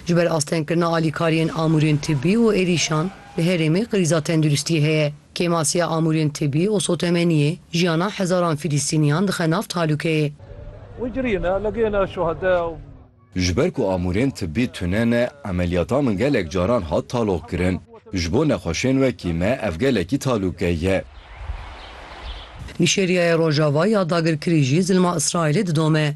Ji ber astengkirina alîkariyên amûrên tibî û êrîşan, di herêmê krîza tenduristiyê heye. Kêmasiya amûrên tibî û sotemeniyê jiyana hezaran Filistîniyan dixe nav tehlûkeyê. Ji ber ku amûrên tibî tune ne, emeliyata min gelek caran hat taloqkirin. Ji bo nexweşên wekî me ev gelekî talûke ye. Nîjêriyayê Rojava ya dagirkirî jî zilma Îsraîlê didome.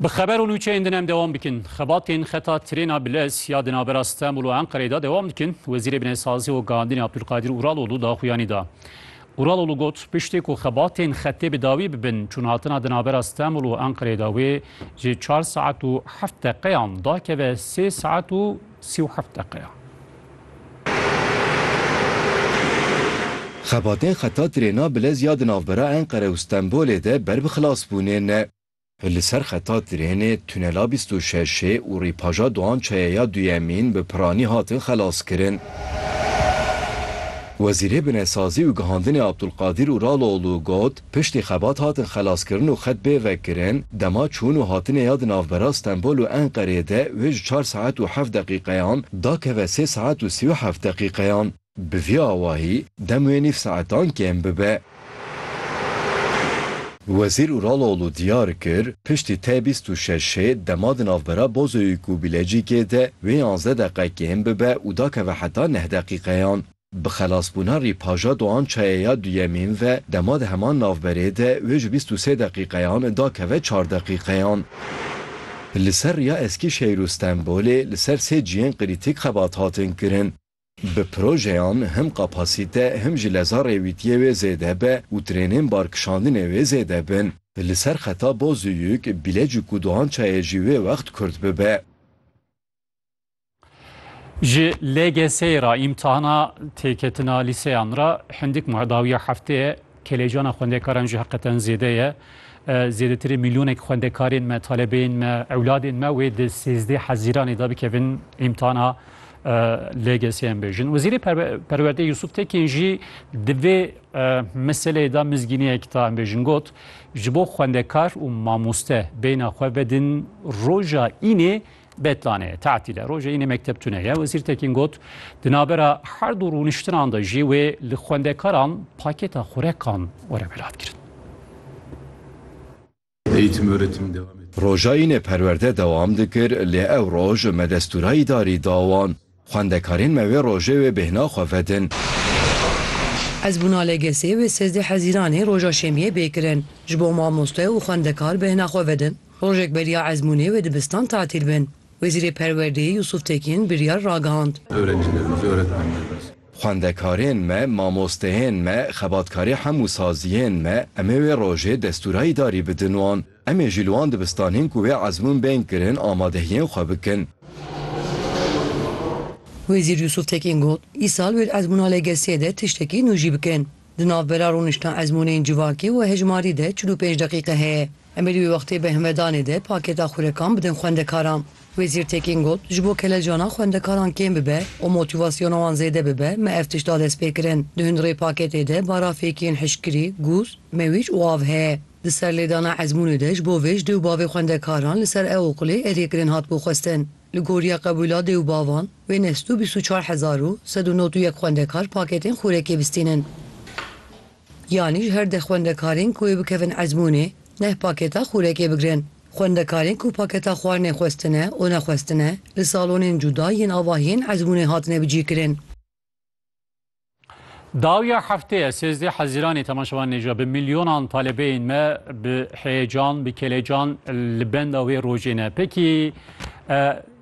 Bi xeber û nûçeyên din em dewam bikin. Xebatên xeta trêna bilez ya di navbera Stenbul û Enqereyê de dewam dikin. Wezîrê Binêsazî û Gehandinê Abdulkadir Uraloğlu daxuyanî da. Uraloğlu got, piştî ku xebatên xetê bi dawî bibin, çûnhatina di navbera Stenbul û Enqereyê de wê ji çar saet û heft deqeyan dakeve sê saet û sî û heft deqeyan. Xebatên xeta trêna Bilez ya di navbera Enqere û Stenbolê de ber bi xilasbûnê ne. Li ser xeta trênê tunela bîst û şeşê û rîpaja Doğan Çaya ya duyemîn bi piranî hatin xelaskirin. Wezîrê Binesazî û Gihandinê Abdulkadir Uraloğlu got, Piştî xebat hatin xelaskirin û xet bê vekirin, dema çûn û hatinê ya di navbera Stenbol û Enqereyê de wê ji çar saet û heft deqîqeyan da keve sê saet û sî û heft deqîqeyan. Bi vî awahî dem wê nîv saetan kêm bibe. Wezîr Uraloğlu diyar kir, piştî T bîst û şeş şê dema di navbera Bozoyîk û Bilecîkê de wê yanzdeh deqe kêm bibe û da keve heta neh deqîqeyan. Bi xelasbûna rîpaja Doğan Çayê ya duyemîn ve dema di heman navberê de wê ji bîst û sê deqîqeyan dakeve çar deqîqeyan. Li ser riya Eskîşehîr û Stenbolê li ser sê ciyên krîtîk xebat hatin kirin. Bi projeyan him kapasîte him jî leza rêwîtiyê wê zêde be û trênên barkişandinê wê zêde bin. Li ser xeta Bozüyük, Bilecik û Doğan Çayê jî wê wext kurt bibe. Ji LGS'ê re îmtihana têketina lîseyan re hindik ma dawiya hefteyê kelejana xwendekaran jî heqeten zêde ye. Zêdetirê mîlyonek xwendekarên me, talebeyên me, ewladên me wê di sêzdeh hezîranê de bikevin îmtihana LGS'ê bêjin. Wezîrê Perwerdeyê Yusuf Tekên jî di vê meseleyê de mizgîniyek da bêjin got, ji bo xwendekar û mamoste beyna xwe vedin roja înê Bêtlanê, tatîl e, rojê înê mekteb tune ye. Wezîr Tekîn got, Di navbera her du rûniştinan de jî wê li xwendekaran pakêta xurekan were welatkirin. Eğitim öğretim devam etti. Roja înê perwerde dewam dikir lê ew roj me destûra îdarî da wan. Xwendekarên me wê rojê wê bêhna xwe vedin. Hezbûna li Gesê wê sezdeh Hezîranê roja Şemiyê bê kirin. Ji bo mamoste û xwendekar bêhna xwe vedin, rojek beriya ezmûnê wê dibistan tatîl bin. Wezîrê Perwerdeyê Yûsûf Tekîn biryar ragihand. Xwendekarên me, mamosteyên me, xebatkarê hemû saziyên me, em ê wê rojê destûra îdarî bidin wan. Em ê ji li wan dibistanên ku wê ezmûn bên kirin amadehiyên xwe bikin. Wezîr Yûsûf Tekîn got, Îsal wê di ezmûna LGS'ê de tiştekî nû jî bikin. Di navbera rûniştina ezmûnên civakî û hejmarî de çil û pênc deqîqe heye. Em ê di wê wextê berhmedanê de pakêta xûrekan bidin xwendekaran. Wezîr Tekîn got, Ji bo kelecana xwendekaran kêm bibe û motîvasyona wan zêde bibe me ev tişt da destpêkirin. Di hundirê pakêtê de barafêkiyên hişkkirî, gûz, mewîc û av heye. Di serlêdana ezmûnê de ji bo vê ji dê û bavê xwendekaran li ser Eoqilê eriyê kirin hatibû xwestin. Li goriya qebûla dê û bavan, wê neh sed û bîst û çar hezar û sed û nod û yek xwendekar pakêtên xûrekê bistînin. Yanî ji her deh xwendekarên ku ê bikevin ezmûnê, neh pakêta xûrekê bigirin. Xwendekarên ku pakêta xwarinê xwestine û nexwestine, li salonên cuda yên avahiyên ezmûnê hatine bicîkirin. Dawiya hefteye sêzdê hezîranê temaşevan nêja bi milyonan talebeyên me bi heyecan bi kelecan li benda wê rojê ne. Pekî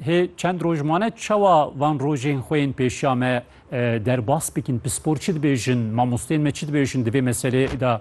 hê çend roj mane çawa van rojên xwe yên pêşiya me derbas bikin pispor çi dibêjin mamostên me çi dibêjin divê meselê da